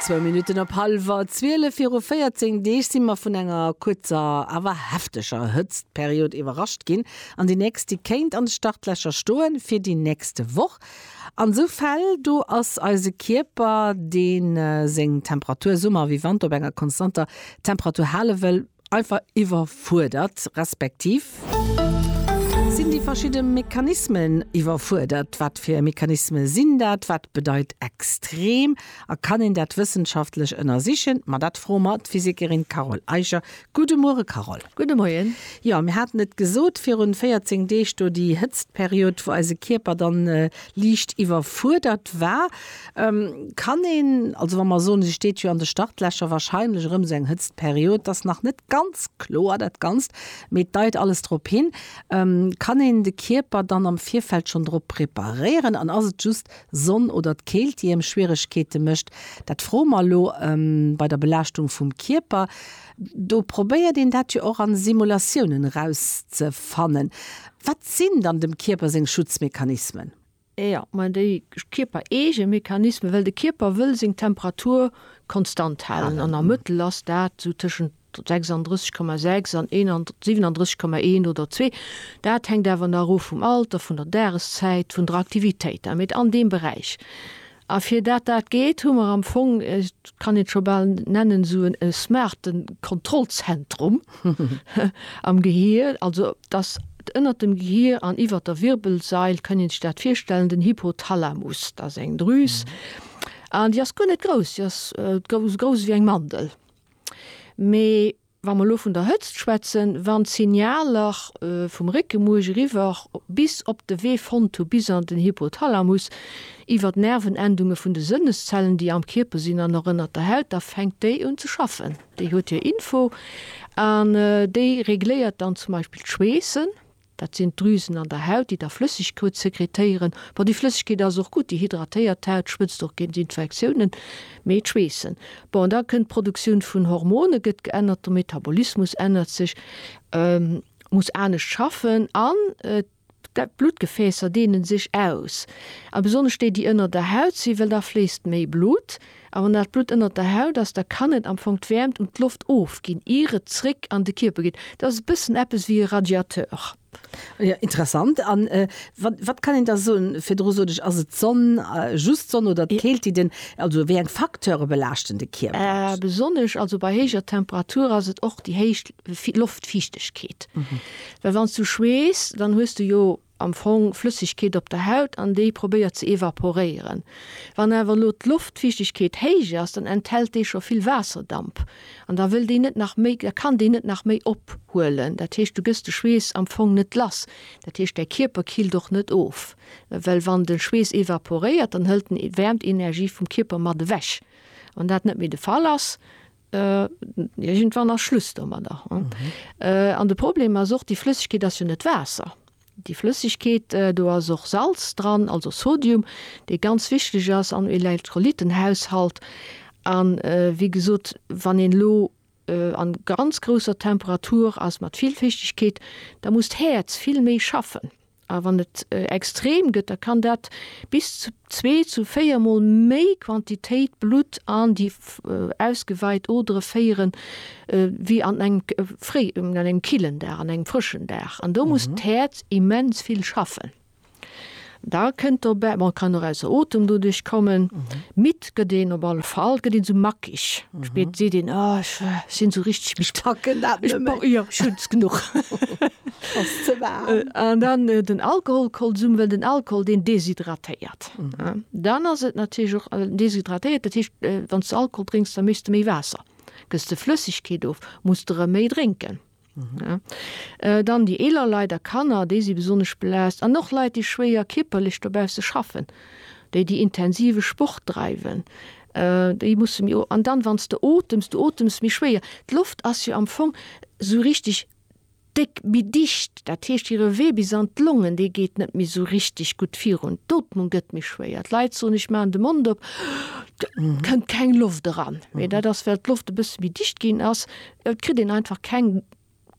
Zwou Minutten op hallwer zwielef viru 14 Deeg si mer vun enger kuerzer awer hefteger Hëtztperiod iwwerrascht ginn an déi nächst, déi kéint an de Startlächer stoe fir déi nächst Woch. An sou Fäll do ass eise Kierper, dee seng Temperatur, Summer ewéi Wanter, op enger konstanter Temperatur hale wëll, Einfach iwwerfuerdert, respektiv. Sinn déi verschidde Mechanismen iwwerfuerdert? Wat fir Mechanisme sinn dat? Wat bedeit extrem? A kann een dat wëssenschaftlech ënnersichen? Ma dat froe mer d'Physikerin Carole Eicher. Gudde Muere Carole. Gudde Moien. Jo, mir haten et gesot virun 14 Deeg do, déi Hëtztperiod, wou eise Kierper dann liicht iwwerfuerdert war. Kann een, also wa mer soen, si steet jo an de Startlächer, wahrscheinlech erëm esou eng Hëtztperiod, et ass nach net ganz kloer dat Ganzt, mee et deit alles drop hin, kann een de Kierper dann am Virfeld schonn drop preparéieren an ass et just Sonn oder d'Keelt, déi engem Schwieregkeete mécht? Dat froe mer elo bei der Belaaschtung vum Kierper. Do probéiert een dat jo och a Simulatiounen erauszefannen. Wat sinn dann dem Kierper seng Schutzmechanismen? Jo, mä déi kierpereege Mechanismen, well de Kierper wëll seng Temperatur konstant halen an am Mëttel ass dat esou tëschent 36,6 an 37,1 oder zwee, dat hänkt awer nach of vum Alter, vun der Dageszäit, vun der Aktivitéit, mä an deem Beräich. A fir dat dat geet, hu mer am Fong, ech kann et scho bal nennen, esou e smarten Kontrollzentrum am Gehir. Also et ass ënnert dem Gehir an iwwer der Wirbelsail, kënnt een sech dat virstellen, den Hypothalamus. Dat ass eng Drüs an déi ass guer net grouss, déi ass grouss wéi eng Mandel. Mee. Wa mer elo vun der Hëtzt schwätzen, wann d'Signaler vum Réckemuerch eriwwer bis op de Wee fonnt hu bis an den Hypothalamus, iwwer d'Nervenendunge vun de Sënneszellen, déi am Kierper sinn an och ënnert der Haut, da fänkt déi un ze schaffen. Déi huet hir Info an déi regléiert dann zum Beispill d'Schweessen. Dat sinn d'Drüsen an der Haut, déi da Flëssegkeut sekretéieren. Bon, déi Flëssegkeet ass och gutt, déi hydratéiert d'Haut, schwëtzt och géint Infektiounen. Mee d'Schweessen, bon, da kënnt d'Produktioun vun Hormone gëtt geännert, de Metabolismus ännert sech, muss anescht schaffen an d'Bluttgefäässer deene sech aus. A besonnesch déi, déi ënner der Haut sinn, well da fléisst méi Blutt. A wann dat Blutt ënnert der Haut ass, da kann et am Fong d'Wäermt un d'Loft ofginn, ier et zréck an de Kierper geet. Dat ass e bëssen eppes wéi e Radiateur. Jo, interessant. A wat kann een da soen? Virdru sot ech, ass et d'Sonn, just d'Sonn oder d'Keelt, déi den. Also wéi eng Facteure belaaschten de Kierper? Besonnesch also bei héijer Temperature ass et och déi héich Loftfiichtegkeet. Well wann s du schweess, dann hues du jo am Fong Flëssegkeet op der Haut an déi probéiert ze evaporéieren. Wann awer elo d'Loftfiichtegkeet héich ass, dann enthält déi scho vill Waasserdamp an da wëll déi net nach méi, da kann déi net nach méi ophuelen. Dat heescht, du gëss de Schweess am Fong net lass. Dat heescht, däi Kierper killt och net of, well wann de Schweess evaporéiert, dann hëlt en Wäermtenergie vum Kierper mat ewech. Wann dat net méi de Fall ass, Iergendwann ass Schluss domadder. An de Problem ass och, déi Flëssegkeet ass jo net Waasser. Déi Flëssegkeet, do ass och Salz dran, also Sodium, dee ganz wichteg ass am Elektrolytenhaushalt. A wéi gesot, wann een elo a ganz grousser Temperatur ass, mat vill Fichtegkeet, da muss d'Häerz vill méi schaffen. A wann et extrem gëtt, da kann dat bis zu zwee zu véier Mol méi Quantitéit Blutt an déi ausgeweit Odere féieren, wéi an engem fréi, an engem killen Dag, an engem frëschen Dag. An do muss d'Häerz immens vill schaffen. Da kënnt dobäi, bon, et kann och ausser Otem doduerch kommen. Spéit gëtt een op alle Fall, gëtt een esou mackig. Spéit seet een, oh, ech sinn esou richteg midd. Ech packen dat net méi. Jo, ech hunn es genuch. Ass ze waarm. An dann den Alkoholkonsum, well den Alkohol, deen deshydratéiert. Dann ass et natierlech och, deshydratéiert, dat heescht, wann s de Alkohol drénks, da méchs de méi Waasser. Gëss de Flëssegkeet of, muss de erëm méi drénken. Dann déi eeler Leit a Kanner, déi si besonnesch belaascht, an och Leit, déi schwéier kierperlech dobausse schaffen, déi déi intensive Sport dreiwen, déi musse méi. An dann, wann s de otems, du otems méi schwéier. D'Loft ass jo am Fong esou richtig déck, méi dicht. Dat heescht, hire Wee bis an d'Longen, dee geet net méi esou richtig gutt virun. D'Ootmung gëtt méi schwéier. D'Leit soen, ech maachen de Mond op, et kënnt keng Loft eran. Mee dat ass, well d'Loft e bësse méi dicht ginn ass, Et kritt een einfach keng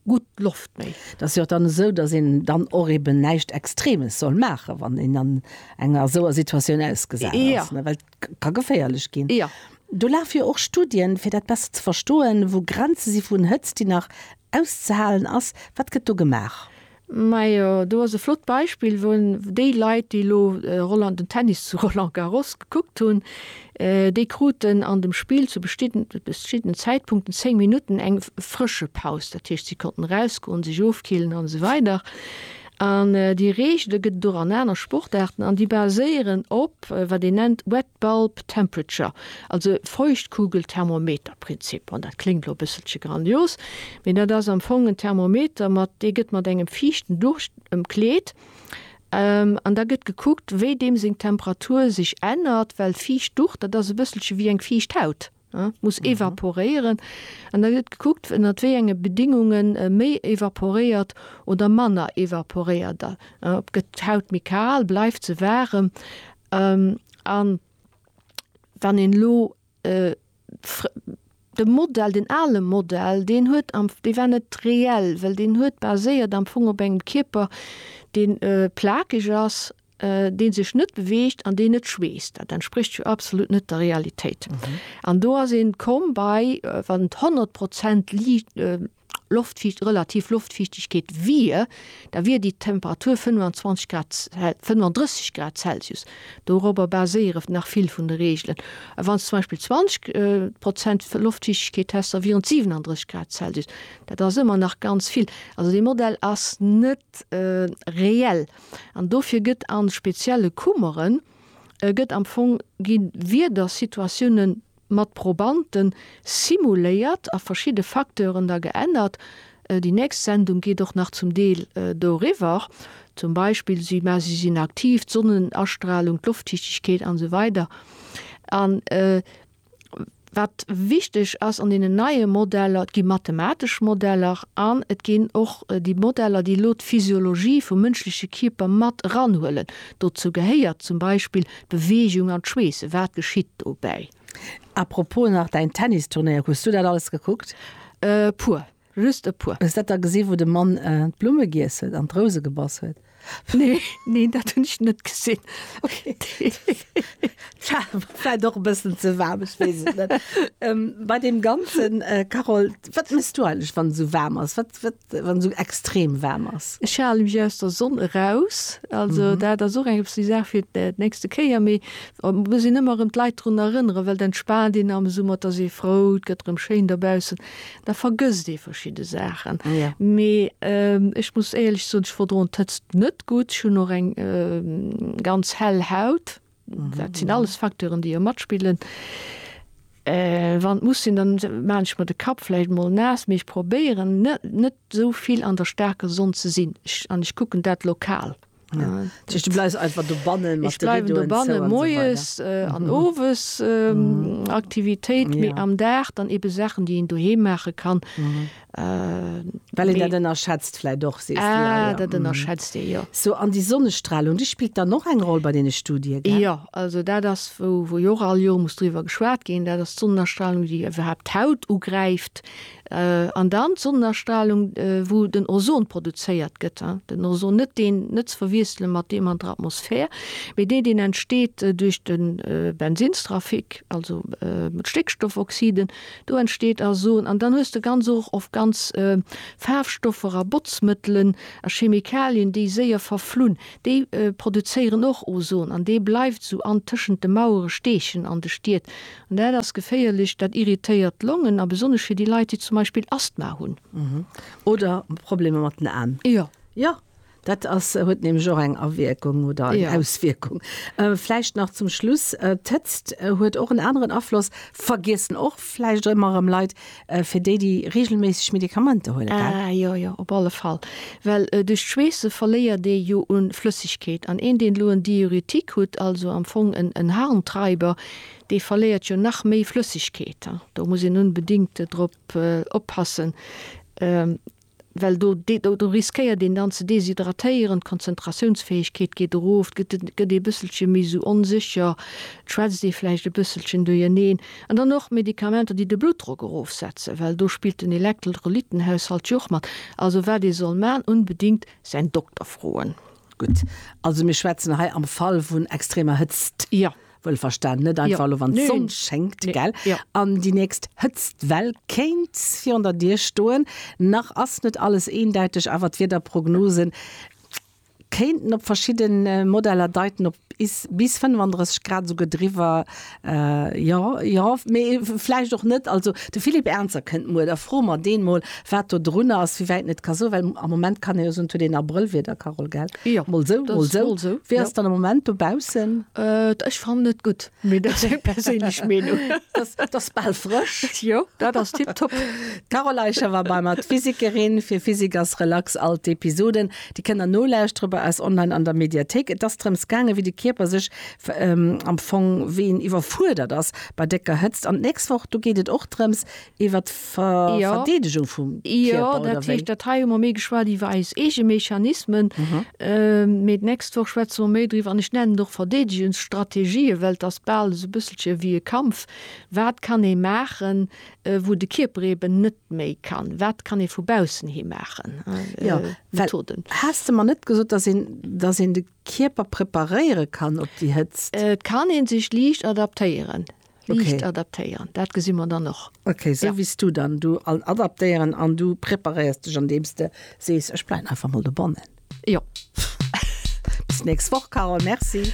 gutt Loft méi. Et ass jo och dann esou, datt een dann och eben näischt Extremes soll maachen, wann een an enger esouer Situatioun ausgesat ass. Jo. Well et ka geféierlech ginn. Jo. Do lafe jo och Studien, fir dat besser ze verstoen, wou Grenze si vun Hëtzt, déi nach auszehalen ass. Wat gëtt do gemaach? Majo, do ass e flott Beispill, wou déi Leit, déi elo Roland, den Tennis zu Roland Garros gekuckt hunn, déi kruten an dem Spill zu beschtidene Zäitpunkten 10 Minutten eng frësche Paus. Dat heescht, si konnten erausgoen, sech ofkillen an esou weider. An déi Reegele gëtt et och an aner Sportaarten an déi baséieren op wat een nennt Web. Bulb Temperature, also Feuchtkugelthermometerprinzip. An dat kléngt elo e bësselche grandios, mee dat ass am Fong en Thermometer, mat dee gëtt mat engem fiichten Ducht ëmkleet an da gëtt gekuckt, wéi deem seng Temperatur sech ännert, well fiicht Ducht, dat ass e bësselche wéi eng fiicht Haut. muss evaporéieren an da gëtt gekuckt ënnert wéi enge Bedingunge méi evaporéiert oder manner evaporéiert gëtt. D'Haut méi kal, bleift se waarem an wann een elo de Modell, den ale Modell, deen huet am, dee war net reell, well deen huet baséiert am Fong op engem Kierper, dee plakeg ass deen sech net beweegt an deen net schweesst, dat entsprécht jo absolut net der Realitéit. An do ass een komm bei, wann et 100 Prozent Liicht, Loftfiicht, relativ Loftfiichtegkeet wier, da wier déi Temperatur 25 Grad, 35 Grad Celsius. Dorobber baséieren nach vill vun de Reegelen. A wann s zum Beispill 20 Prozent Loftfiichtegkeet häss, da wieren et 37 Grad Celsius. Dat ass ëmmer nach ganz vill. Also dee Modell ass net reell. An dofir gëtt a spezielle Kummeren gëtt am Fong gi Wiedersituatioune mat Probante simuléiert a verschidde Facteuren da geännert. Déi nächst Sendung geet och nach zum Deel doriwwer. Zum Beispill si mä si sinn aktiv, d'Sonnenastralung, d'Loftdichtegkeet an esou weider. An Wat wichteg ass an deenen neie Modeller, et gi mathematesch Modeller an et ginn och déi Modeller, déi elo d'Physiologie vum mënschleche Kierper mat eranhuelen. Dozou gehéiert zum Beispill d'Beweegung an d'Schweessen. Wat geschitt dobäi? Apropos nach däin Tennisturnéier, hues du dat alles gekuckt? Puer. Just e puer. Hues dat da gesi wou de Mann d'Blumme giess huet an d'Rouse gebass huet? Nee, nee dat hunn ech net gesinn. Okay. Vläit och e bëssen ze waarm, ech weess et net. Bei deem ganzen, Carole, wat mëss du eigentlech wann esou waarm ass, wat wat wann esou extrem waarm ass? Ech hale mech aus der Sonn eraus, also dat ass och eng eppsi Saach fir d'nächste Kéier, mee muss een ëmmer erëm d'Leit drun erënneren, well et entspaant een am Summer, et ass ee frou, et gëtt erëm schéin dobaussen. Da vergësst ee verschidde Saachen. Ja. Mee ech muss éierlech soen, ech verdroen d'Hëtzt net gutt. Ech hunn och eng ganz hell Haut. Dat sinn alles Facteuren, déi jo matspillen. Wann et muss sinn, dann maachen ech mer de Kapp vläicht emol naass. Mee ech probéieren net net esou vill an der staarker Sonn ze sinn. Ech an ech kucken dat lokal. Moes an owes Aktivitéit méi am Dag dann ebe Saachen déi een doheem maache kann. Well een dat ënnerschätzt vläit och sees du? Jo, dat ënnerschätzt ee jo. Sou an déi Sonnestralung, déi spillt dann och eng Roll bei deene Studie? Jo, also dat ass wou jo och all Joer muss driwwer geschwat ginn. Dat ass d'Sonnestralung déi iwwerhaapt d'Haut ugräift. An dann d'Sonnenastralung, wou den Ozon produzéiert gëtt, den Ozon, net deen, net ze verwiessele mat deem an der Atmosphär, mee deen, deen entsteet duerch de Bensinnstrafic, also d'Stéckstoffoxiden, do entsteet Azon. An dann hues de ganz och oft ganz Faarfstoffer a Botzmëttelen a Chemikalien, déi séier verflunn, déi produzéieren och Ozon an dee bleift esou an tëschent de Mauere steechen an de Stied, An dat ass geféierlech, dat irritéiert d'Longen a besonnesch fir déi Leit, déi zum Beispill Asthma hunn. Oder Problemer mat den An. Jo. Jo, dat ass, huet nämlech och eng Awierkung oder eng Auswierkung. Vläicht nach zum Schluss, d'Hëtzt huet och en aneren Afloss, vergiessen och vläicht ëmmer erëm Leit, fir déi, déi reegelméisseg Medikamenter huelen, gell? Ah jo, jo, op alle Fall. Well duerch d'Schweesse verléiert ee jo u Flëssegkeet. An een, deen elo en Diuretik hutt, also am Fong en Harntreiber, Dee verléiert jo nach méi Flëssegkeet. Do muss een unbedéngt drop oppassen, well do do riskéiert een dann ze deshydratéieren, d'Konzentratiounsfäegkeet geet erof, gëtt ee bësselche méi esou onsécher, schwätzt ee vläicht e bësselchen duerjeneen. An dann och Medikamenter, déi de Bluttdrock erofsetzen, well do spillt den Elektrolytenhaushalt jo och mat. Also wat ee soll maachen, unbedéngt säin Dokter froen. Gutt, also mir schwätzen hei am Fall vun extremer Hëtzt. Jo. Wëllverstanen, net einfach elo, wann d'Sonn schéngt, gell? An déi nächst Hëtztwell kéint virun der Dier stoen. Nach ass net alles eendäiteg, awer d'Wiederprognose kéinten op verschidde Modeller deiten op bis 35 Grad, esouguer driwwer. Jo, jo, mee vläicht och net. Also de Philippe Ernzer kënnt muer, da froe mer deen mol, Wat do drunner ass, wéi wäit een et ka soen, well am Moment kann ee jo soen, et huet een Abrëllwieder, Carole, gell? Jo, mol esou, mol esou. Mol esou. Wéi ass et dann am Moment dobaussen? Äh, ech fannen et gutt, mee dat ass eng perséinlech Meenung. Et ass bal frësch. Jo, dat ass tiptop. D'Carole Eicher war bei mer, d'Physikerin. Fir Physik ass relax, all d'Episoden, déi kënnt der nolauschtere bei eis online an der Mediathéik. Et ass drëms gaangen, wéi de Kierper sech am Fong, wéi en iwwerfuerdert ass bei décker Hëtzt. An d'nächst Woch, do geet et och drëms, Iwwer d'Verdeedegung vum Kierper, oder wéi? Jo, dat hei hu mer méi geschwat iwwer eis eege Mechanismen, mee d'nächst Woch schwätze mer méi driwwer. An ech nennen et och Verdeedegungsstrategien, well et ass bal esou e bësselche wéi e Kampf. Wat kann ee maachen, wou de Kierper eeben net méi kann? Wat kann ee vu baussen hi maachen? Jo, well has de mer net gesot, dass een, dass een de Kierper preparéiere kann op déi Hëtzt? Et kann ee sech liicht adaptéieren. Liicht adaptéieren, dat gesi mer dann och. Ok, sou wéi s du dann du all adaptéieren an du preparéiers dech andeems de sees, ech bleiwen einfach mol dobannen. Jo. Bis d'nächst Woch, Carole. Merci.